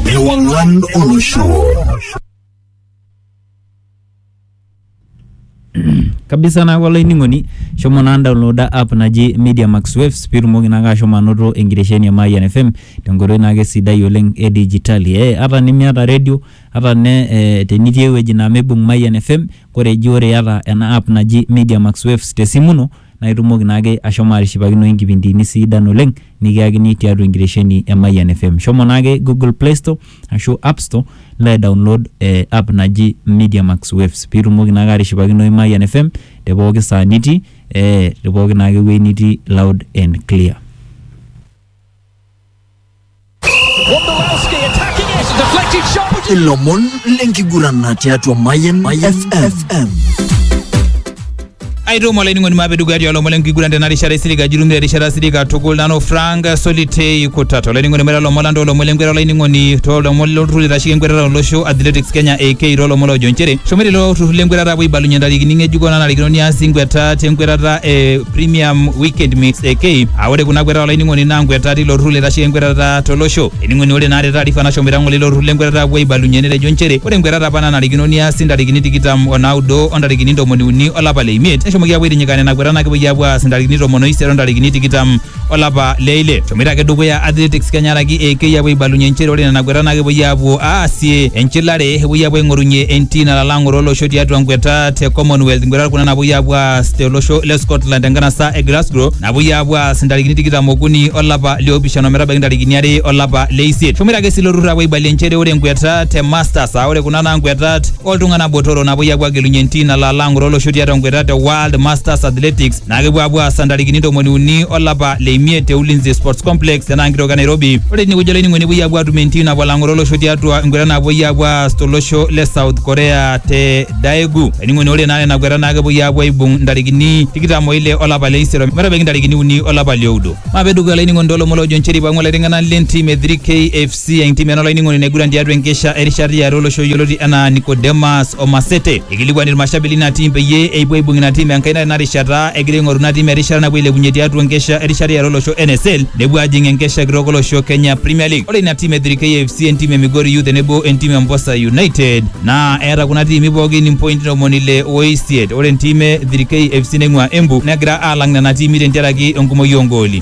ewang'an olosho kabisa naaku olainining'oni shomo naa downloada app naji media max waves piitumoki naake ashomo anoto enkitesheni e mayian fm tenkoitoi naake sidai oleng e dijitali eh, ata nimiata redio ata ne eh, tenitii ewueji naa meibung mayian fm kore eji ore iyata ena app naji media max waves tesimu ino naa itumoki naake ashomo atishipakinoyu inkipindiini siidan oleng nikiyakini tiatua enkitesheni e Mayian FM. Shomo naake Google Play Store ashu App Store nilo aidownload eh app naji Media Max Waves piitumoki naake atishipakinoyu Mayian FM te pooki saa nitii eh te pooki naake wuei nitii loud and clear. ilomon lenkiguran tiatua Mayan FM. aitomo olainining'oni maape dukuya tialo lomon lenkiguran tena rishata isilig ajirumire erishata silig katukul nanu frank solitei kutata olainining'oni maita lomon lantoo lomon lenkwetata olainining'oni too lomon lolturrur oitasheki enkwetata olosho athletics kenya ak too lomon loojo nchere shomoita ilo turrur lenkwetata apuo aibalunye ntarikini ng'ejuko nanarikino niasi nkweta tenkwetata e Premium Weekend Mix AK. Aa ore kuna kwetata olainining'oni naa nkwetata tilo turrur loitasheki enkwetata tolosho. Ening'oni ore naa te taarifa nashomoita ng'ole ilo turrur lenkwetata apuo aibalunye netejo nchere ore nkwetata apa nanarikino niasi ntarikini tikitam o naudo o ntarikini ntomoni uni olapa le imiet neshomoki apuo aitinyika nena kwetata naa kepuoi apuo aas ntarikini tomon o isiet o ntarikini tikitam olapa le ile eshomoita ake dukuya athletics kenya araki eikei apuo aibalunye inchere ore nena kuetat naa kepuoi aapuo aasie enchilare epuoi aapuo aing'orunye entii nalala ang'oro olosho tiatua nkuetat te commonwealth nkuetat kuna napuoi aapuo aas tolosho le scotland tenkanasa e glasgow napuoi aapuo aas intarikini tikitam okuni olapa liopishana ometabaiki intarikini are olapa le isiet eshomoita ake sii ilo turrur apuo aibalie inchere ore nkuetat te masters aa ore kuna naa nkuetat oltung'anak botoro napuoi aapuo agelunye entii nalala ang'oro olosho tiatua nkuetat te world masters athletics naa kepuo apuo aas ntarikini ntomoni uni olapa le imiet te Ulinzi Sports Complex tenaa nkitoki e Nairobi. Ore tinewueji olainining'oni epuoi apuo atum entim napuo alang'oro olosho tiatua enkwetata napuoi apuo aas tolosho le South Korea te Daegu. Olainining'oni ore naa nena kwetata naa kepuoi apuo aibung ntarikini tikitam oile olapa le isiet metabaiki ntarikini uni olapa lioudo. Maape dukuya olainining'oni toolomon loojo nchere eipang'u ilaiteng'enak lentim e 3K FC si entim ena olainining'oni naiguran tiatua enkesha erishata iare olosho yioloti enaa Nicodemus Omasete. Ikilikuan irmashabili ina tim peyie eipuo aibung ina tim enkaina tena rishata egira aing'oru ina tim erishata napuo ailepunye tiatua enkesha erishata iare olosho NSL nepuo ajing enkesha kitok olosho Kenya Premier League. Ore ina tim e 3K FC, entim e Migori Youth tenebo entim e Mposa United naa eeta kuna tiimi pookin impointi ntomoni ile oisiet. Ore entim e 3K FC neing'ua Embu negira aalang nena tiimi tentiaraki enkumoi oongooli.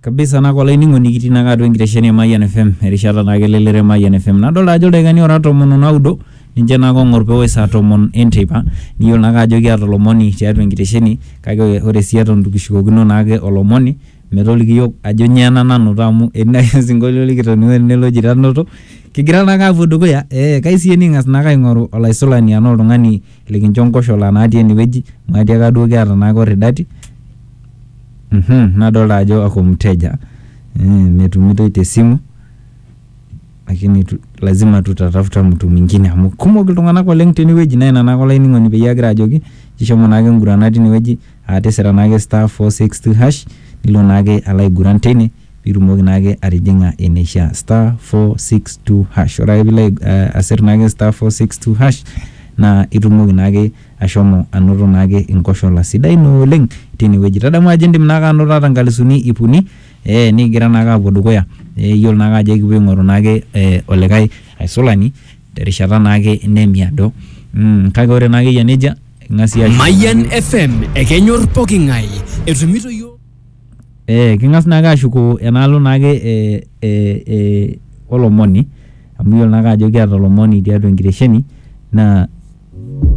kabisa nako olainining'oni kitii naake atua enkitesheni e Mayian FM erishata naake elelero e Mayian FM nadolta ajo ildaikani ora tomon onaudo ninche naake ong'or pewosh saa tomon enteipa niyiolo naake ajo kiata olomoni tiatua enkitesheni kake ore sii eton itu kishukokino naake olomoni metoliki iyiok ajo nyoo ena nanoto amu etii naake osinkolio likitoning'o tene loji tanoto kigira naake aapuo dukuya eh kai sii ening'as naake aing'oru olaisulani anaa oltung'ani likincho nkoshola natii enewueji maatiaka duo kiata naake orridati. Mhm, nadolta ajo ako mteja mm, metumitoi te simu lakini tu, lazima tutatafuta mtu mwingine amu kumok iltung'anak oleng tenewueji naa ina naake olainining'oni peyie agira ajoki ishomo naake ngurana tinewueji aa tisira naake star 462 hash nilo naake alo aiguran teine pitumoki naake atijing'a eneishia star 462 hash ore ake piilo uh, asir naake star 462 hash naa itumoki naake Ashomo anoto naake inkoshola sidain ooleng teine wueji. Tadamu ajo indim naake anoto ata inkalisuni iip uni ee nikigira naake aapuo dukuya. Iyiolo naake ajo ekipuo aing'oru naake olikae aisulani terishata naake nemiado. Kake ore naake eyia nejia ing'as iyie ashukunye. Mayian FM ekenyor poking'ae etumito iyiook. Ee king'as naake aashuko enaalo naake ee olomoni amu iyiolo naake ajo kiata olomoni tiatua enkitesheni naa.